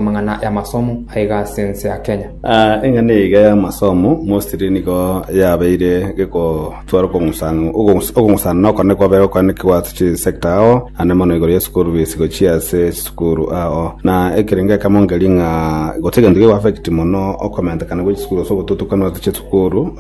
Amang'ana y'amasomo aiga ase ense ya Kenya. Eng'ana eyaiga y'amasomo mostly nigo yabeire gekotwara okong'usana okong'usana na okone kwabere okwane kiwato chisector ao ande mono igoro ye school fees gochia ase chisukuru ao na ekerenge ekemo ngeria ng'a gose egento kego affect mono okomentekana gwe chisukuru gose ogotutukanwa gose chisukuru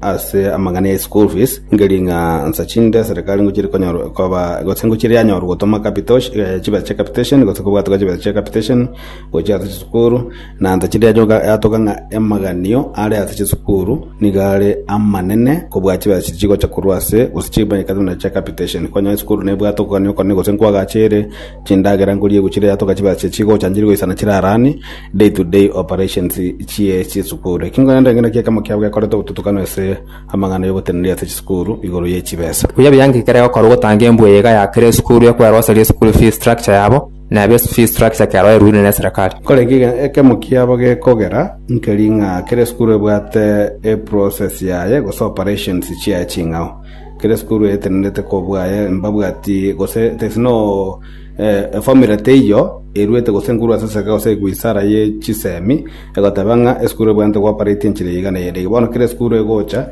ase amang'ana ya school fees Ngerie ng'a nsa chinde eserekari ngochire konyorwa koba gose ngochire yanyorwa gotoma capitation eh, chibesa chia capitation gose kobwatwa chibesa chia capitation gochia ase chisukuru na nsa chinde yachoka yatoka ng'a emaganio are ase chisukuru niga are amanene kobua chibesa chiria chigocha korwa ase gose chibesa buna chia capitation kwanyoa esukuru nebwate okogania okone gose nkwagachere chindagera ngorie egochire yatoka chibesa chiria chigochanchiri goisana chirarani day to day operations chie chisukuru ekio nkorenda ekero naki ekemo kiabo gekorete obotutukano ase Amang'ana y'ogotenena riato chisukuru igoro ye chibesa. Buya buya nki kere gokora ogotanga embwe eyaiga ya kera esukuru ekwera gose eria school fees structure yabo, na ebe fees structure kero eruine ne serikali. Kore nki ekemo kiabo gekogera nkeri ng'a kera esukuru ebwate e process yaye gose operations chiaye ching'ao. Kera esukuru etenerete kobua aye mbabwati gose there is no Efamiri teiyo eruete gose enkuruo ase esegi gose egwe isara ye chisemi, egoteba ng'a esukuru ebwenerete gooparaiti enchera eyio igana eyende eyio. Bono kera esukuru egocha,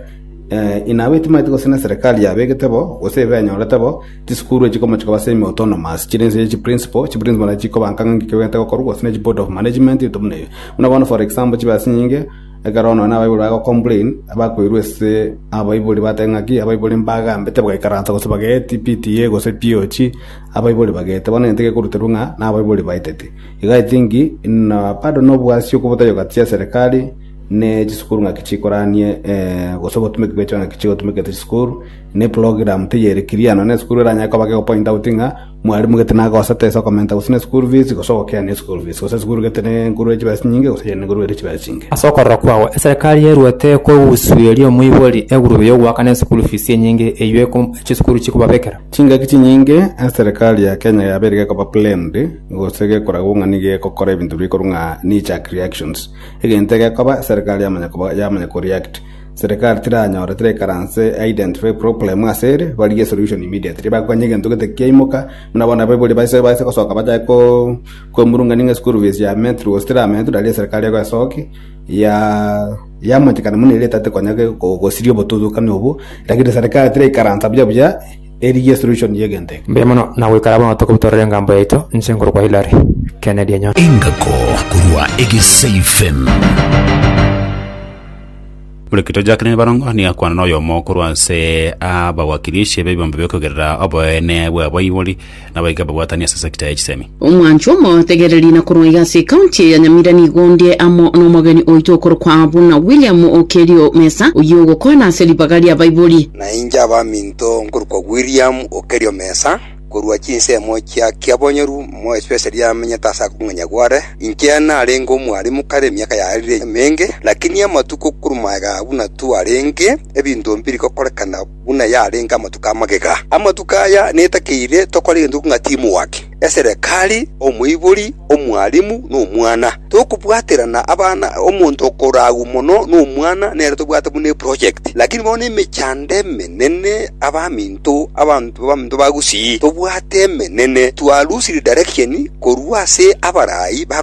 inabo etimaeti gose neserikari yabegete bo, gose ebe enyorete bo, chisukuru echio chikomochia koba semi autonomous, chire inse ye chiprinciple, chiprinciple nachi chikobanka ng'a ng'iki kegwenerete gokorwa, gose ne chiboard of management ebinto buna ebio. Buna bono for example chibe ase nyinge, ekero nonye na abaibori bagocomplain, bakoirwa ase abaibori bateba ng'aki, abaibori mbagambe tibagaikaransa gose bagaeti PTA gose POG. Abaibori bagete, bono egento gekoruterwa ng'a nabaibori baeteti. Iga etingi na bado nobwasi okobotogia gati chiaserekari ne chisukuru ng'aki chikoranie gose obotumeki bwechio ng'aki chigotumeka ase chisukuru, na eprogram teiyo ere clear nonya na esukuru eranyare koba geko point out ng'a mwarimu gete naye agosete ase okomenta gose ne school fees gose ogokeani eschool fees gose esukuru gete negoro ye chibesa chinyinge gose eye negoro ere chibesa chinke. Ase okorora kwao, eserekari yeruete ekogusueria omoibori egurube y'ogoakana eschool fees enyinge eyio chisukuru chikobabekera? Chingaki chinyinge eserekari ya Kenya yabeire gekoba planned gose gekoragwo ng'a nigo egokora ebinto bire korwa ng'a knee jerk reactions. Egento egekoba eserekari yamanya koba yamanya ko react. Serekari tiranyore tirekaranse e identify problem ase ere barigie solution immediately. Ebake konya egento gete kiaimoka buna bono abaibori baise baise gosoka bachae ko koemurungania ng'a school fees yametire gose tirametire aria eserekari egoesoki ya Yamochikana mono eria etate konya gosiria obotutukani obwo, lakini serikali tiraikaransa buya buya erigie solution y'egento eke. Mbuya mono na goikara bono tokobi torore engambo yaito, inche nkorokwa Hilary Kennedy Enyondo. Engako korwa Egesei FM. Orekito Jacqueline Barongo nigo akwana noyomo korwa ase abagwakirishi b'ebiombe biokogerera oboene bw'abaibori nabaika babwatanie ase sector ya chisemi. Omwancho omotegereri na korwa iga ase ekaunti eye ya Nyamira nigo ndie amo nomogeni oito okorokwa buna William Okello Mesa, oyio ogokwana ase ribaga ria baibori. Na inche abaminto nkorokwa William Okello Mesa, korwa chinsemo chia Kiabonyoru, mo especially amenyete ase akong'enya gware. Inche narenge omwalimu kare emiaka yarire emenge, lakini amatuko korwa maega buna twarenge, ebinto mbiri gokorekana. buna yarenge amatuko amagega. Amatuko aya netakeire tokore gento ng'a timwake, eserekari, omoibori, omwalimu, na omwana. Tokobwaterana abana, omonto okora agwo mono nomwana nere tobwate buna eproject. Lakini bono emechando emenene, abaminto, abanto baminto ba gusii, tobwate emenene, twalusire direction korwa ase abarai ba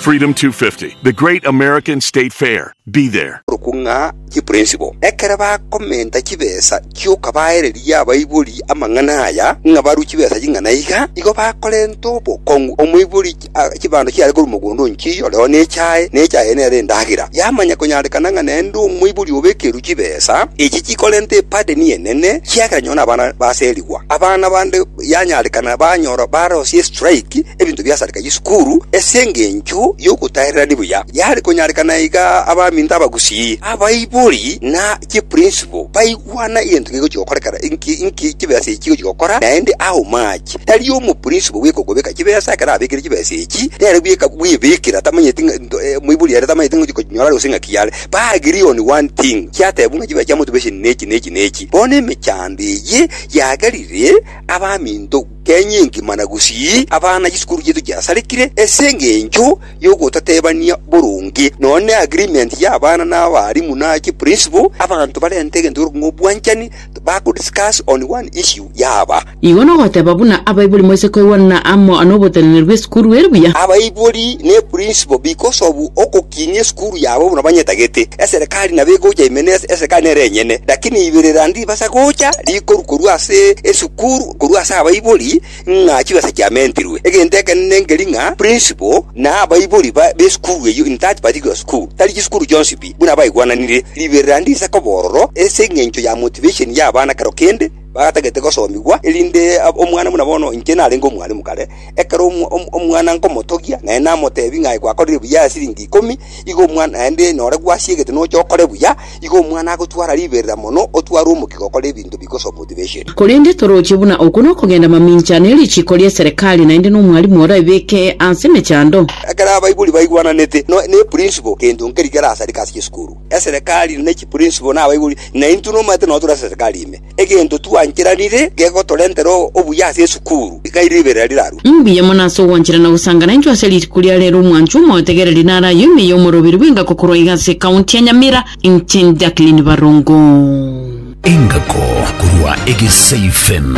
Freedom 250, the great American state fair. Be there. boruku ng'a chipurinsipo. Ekero bakomenta chibesa chioka baereria abaibori amang'ana aya ng'a barue chibesa ching'ana iga, igo bakorenta obokong'u. Omoibori a- chibando chiare korua mogondo o nchiyi oreo nechae, na echae eye nere endagera. Yamanya konyarekana ng'a nende omoibori obekerwe chibesa echi chikorenta ebadeni enene, kiagera nyoo nabana baserigwa. Abana bande Yanyarekana banyora barosie estrike ebinto biasareka chisukuru ase engencho y'ogotaererania buya. Yare konyarekana iga abaminto, abagusii, abaibori, na chiprincipo baigwana egento kegochia gokorekana inki inki chibesa echi chigochia gokora, naende how much. Tari omoprincipo bw'ekogobeka chibesa ekero abekire chibesa echi, nere bweka bwebekera tamanyeti ng'a nto eh moibori ere tamanyeti ng'a ochikonyinyora gose ng'aki yare. Ba agree on one thing, chiatebwa ng'a chibesa chia motivation nechi nechi nechi. Bono emechando eye. Yagerire abaminto kenya engima na gusii abana chisukuru chiaito chiasarikire ase engencho y'ogotatebania boronge, nonya ne agreement y'abana na abarimu na chi principal, abanto barente egento gekorokwa ng'a obwanchani to bago discuss on one issue yaba. Igo nogoteba buna abaibori moise koigwana amo noboteneneri bw'esukuru ere buya. Abaibori ne principal because of ogo. Kinia esukuru yabo buna banyetagete, eserekari nabo egocha ime ne eserekari nere enyene, lakini ibirira ndibasa gocha rikoru korwa ase esukuru korwa ase abaibori ng'a chibesa chiamentirwe. Egento ekenene nkeri ng'a principal na abaibori ba b'esukuru eyio in that particular school tari chisukuru chionsi pi buna baigwananire. Ribirira ndise koba ororo ase eng'encho ya motivation y'abana kero kende bagatagete gosomigwa erinde omwana buna bono inche narenge omwalimu kare, Ekero omwana nkomotogia, naende namoteebia ng'a aye gwakorire buya aya siringi ikomi, igo omwana naende nore gwasiegete noche okore buya, igo omwana agotwara riberera mono, otware omokia gokora ebinto bigosoa motivation. Korende toroche buna okwo nokogenda mamincha, ne richiiko ri'eserekari, naende nomwalimu oraebeke ase emechando. Ekero abaibori baigwananete, neprinciple kento nkeria kerasareke ase chisukuru, eserekari, ne chiprinciple, na abaibori, na intwe nomanyete nonye tore ase eserekari ime. Egento twancheranire gegotorentera obuya ase esukuru, iga ribeera rirarue. Mbuya mono ase ogwanchera na gosangana intwe ase rituko ria rero omwanchwa omotegereri nare aye ime y'omorobiri bw'engako korwa iga ase ekaunti ya Nyamira inche Jacqueline Barongo. Engako korwa Egesaifem.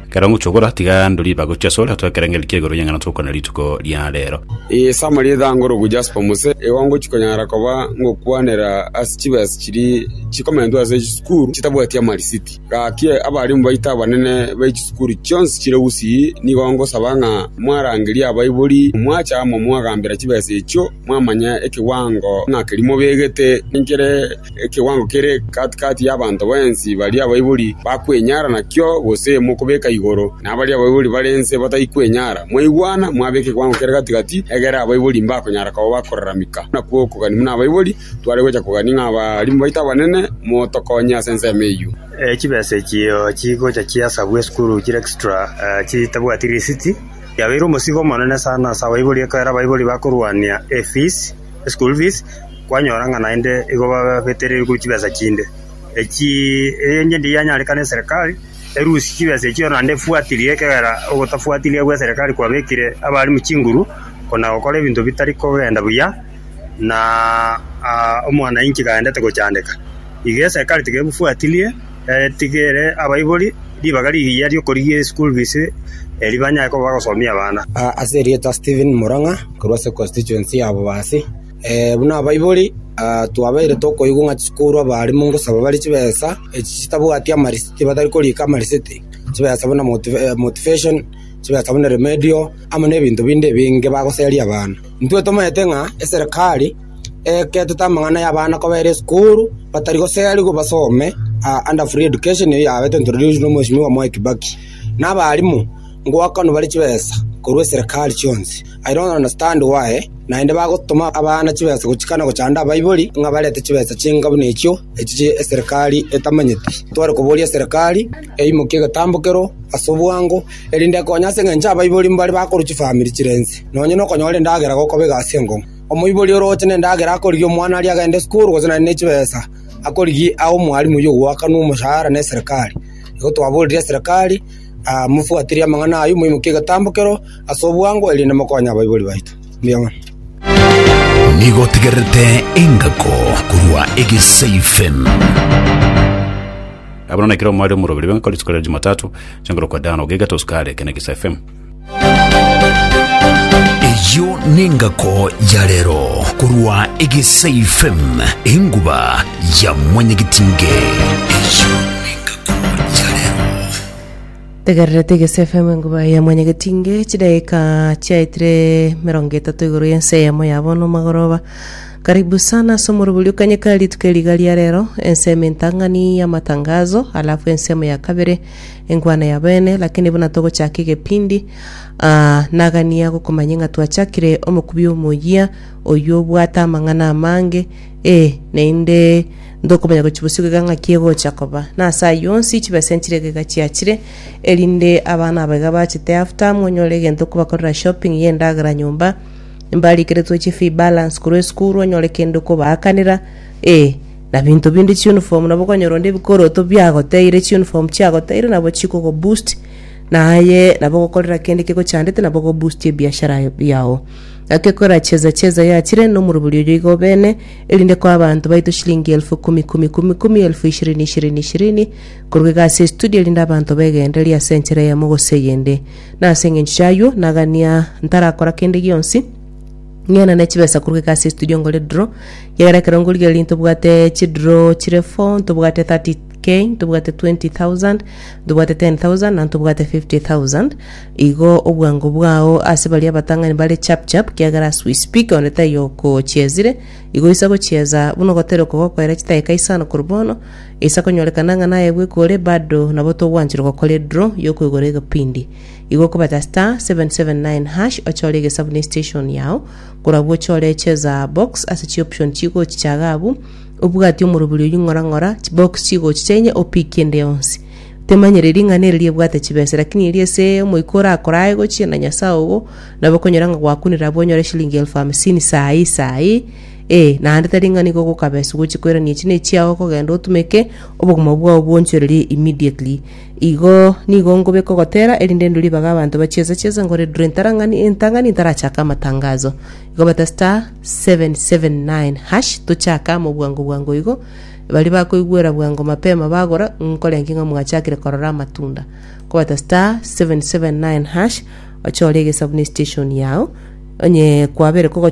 Ekero ngochia gokora, tiga ndorie bagochi asore, otware ekerengerio kia igoro y'eng'ana togokwana rituko ria reero. Ee, Sama ri'ethaa ngoroku jasper mose ewa ngochia konyara koba ngokwanera ase chibesa chiria chikomentwe ase chisukuru chitabwati amarisiti. Gaki abarimu baito abanene be chisukuru chionsi chire Gusii nigo ngosaba ng'a mwarangerie abaibori, mwacha amo mwagambera chibesa echio, Mwamanya ekewango ng'a keria mobegete nenkere ekewango kere kati kati y'abanto bonsi baria abaibori bakwenyara nakio, gose mokobeka igoro nabaria abaibori bare inse batai kwenyara. Mwaigwana, mwabeka ekewango kere gati gati, egere abaibori mbakonyara koba bakoraramika. Nakwo okogania buna abaibori, tware gocha kogania ng'a abarimu baito abanene motokonye ase ensemo eyio. Chibesa echio chigocha chiasabwa esukuru chire extra chitabwati risiti. Yabeire omosigo omonene sana ase abaibori ekiagera abaibori bakorwania efees, school fees, kwanyora ng'a naende igo babetereire korwa chibesa chinde. Echi enyia ndiye yanyarekana eserekari erusie chibesa echio naende efuatirie ekiagera ogotafuatiria gwa eserekari kwabekire abalimu chinguru kona gokora ebinto bitari kogenda buya na omwanainchi kaendete gochandeka. Iga eserekari tiga ebufuatirie. Eh, tiga ere abaibori ribaga rigiya ri'okorigia eschool fees eri banyare koba bagosomia abana. Ah, ase erieta Stephen Murang'a korwa ase constituency ya Bobasi. Eh, buna abaibori ah, twabeire tokoigwa ng'a chikorwa abaalimu ngosaba bare chibesa echi chitabwati amarisiti batari korika amarisiti, chibesa buna moti eh, motivation, chibesa buna remedio amo na ebinto binde ebinge bagoseria abana. Intwe tomaete ng'a eserekari eeketete amang'ana y'abana kobaira esukuru, batari goserigwa basome aa under free education eyi yabeete introduced na mweshimiwa Mwai Kibaki. Na abaalimu, ngoakanwa bare chibesa korwa eserekari chionsi. I don't understand why naende bagotoma abana chibesa gochika na gochanda abaibori ng'a barente chibesa chinga buna echio echi chia eserekari etamanyeti. Tware koboria eserekari eimokie egetambo kero ase obwango erinde ekonye ase eng'encho abaibori mbare bakorwa chifamiri chire nse. Nonye na okonyora endagera gokoba egasi enkong'u. Omoibori orooche nendagera akorigia omwana aria agende esukuru gose naende ne chibesa akorigia abe omwalimu oywo ogoakanwa omoshahara ne serikari. Igo twaborire eserekari ah mofuatirie amang'ana aywo moimokie egetambo kero ase obwango erinde mokonye abaibori baito. Mbuya mono. Nigo otegererete engako korwa egesaifm. Abana na ekero mware omoroberi bengakora rituko ria jumatatu, chinguru kwa dano gaiga toskare kene gisa FM. Eyio nengako ya rero korwa Egesae FM enguba ya mwanyagitinge. Eyio nengako ya rero. tegererete egese fm enguba ya mwanyagetinge chidaika chiaetire mirongo etato igoro y'ense eyemo ya bono magoroba karibu sana ase omorobori okanyeka rituko eriga ria rero ensemo entang'ani y'amatangazo alafu ensemo ya kabere enkwana ya bene, lakini buna togochaka egepindi, aa, nagania gokomanya ng'a twachakire omokubi omoyia, oyio obwate amang'ana amange, ee, naende ntokomanya gochibuswa egeka ng'aki egocha koba. Na ase ayio onsi chibesa nchire egeka chiachire, erinde abana aba iga bachete after, monyore egento kobakorera shopping ya endagera nyomba, mbarikeretwe chifee balance korwa esukuru, onyore kende okobaakanera, ee. Na binto binde chiuniform nabo okonyora onde ebikoroto biagoteire, chiuniform chiagoteire nabo chikogo boost, na aye nabo ogokorera kende kegochandete nabo ogo boost ebiashara yao. Gaki ekorera cheza cheza yachire nomorobori oyo igo bene, erinde koa abanto baito shilingi elfu kumi kumi kumi kumi elfu ishirini ishirini ishirini korwa iga ase estudio erinde abanto begendererie ase enchera eyemo gose eyende. Na ase engencho chiayio nagania ntarakora kende gionsi, Ng'ina ne chibesa korwa geka ase estudio ngore draw. Kiagera ekero ngorigia erio ntobwate chidraw chire four, ntobwate 30k, ntobwate 20,000, ntobwate 10,000 na ntobwate 50,000. Igo obwango bwao ase baria abatang'ani bare chap chap kiagera as we speak onde taiyo okochiezire. Igo oise gochieza buna ogoteera okogokoera chidakika isano korwa bono. Isa konyorekana ng'a naye bweka ore bado nabo togwanchorwa gokora edraw yokoigora egepindi. Igokobeta star seven seven nine hash ochore egesabu ne station yao, korabwo ochore cheza box ase chioption chigochichaga abwo, obwati omorobori oyio ng'ora ng'ora chibox chigochicha inye opick kende yonsi. Temanyire ring'ana eri riebwate chibesa lakini eri ase omoika orakora aye gochia na Nyasaye ogo nabo okonyora ng'a gwakunire abwo onyore shilingi elfu hamsini saa eye saa eye ee naende tari ng'a nigo ogokabesa gochia koirania echi ne echiao okogenda otumeke obogima bwao bwonchorerie immediately Igo nigo nkobe kogotera, erinde ndure ribaga abanto bachiese chiese nkore ndure ntarang'ani entang'ani ntarachake amatangazo. Igo bete star 779 hash tochake amo bwango bwango igo. Baria bakoigwera bwango mapema bagora nkore nki ng'a mwachakire korora amatunda. Kobata star 779 hash ochore egesabu ne station yao onye kwabere kogochora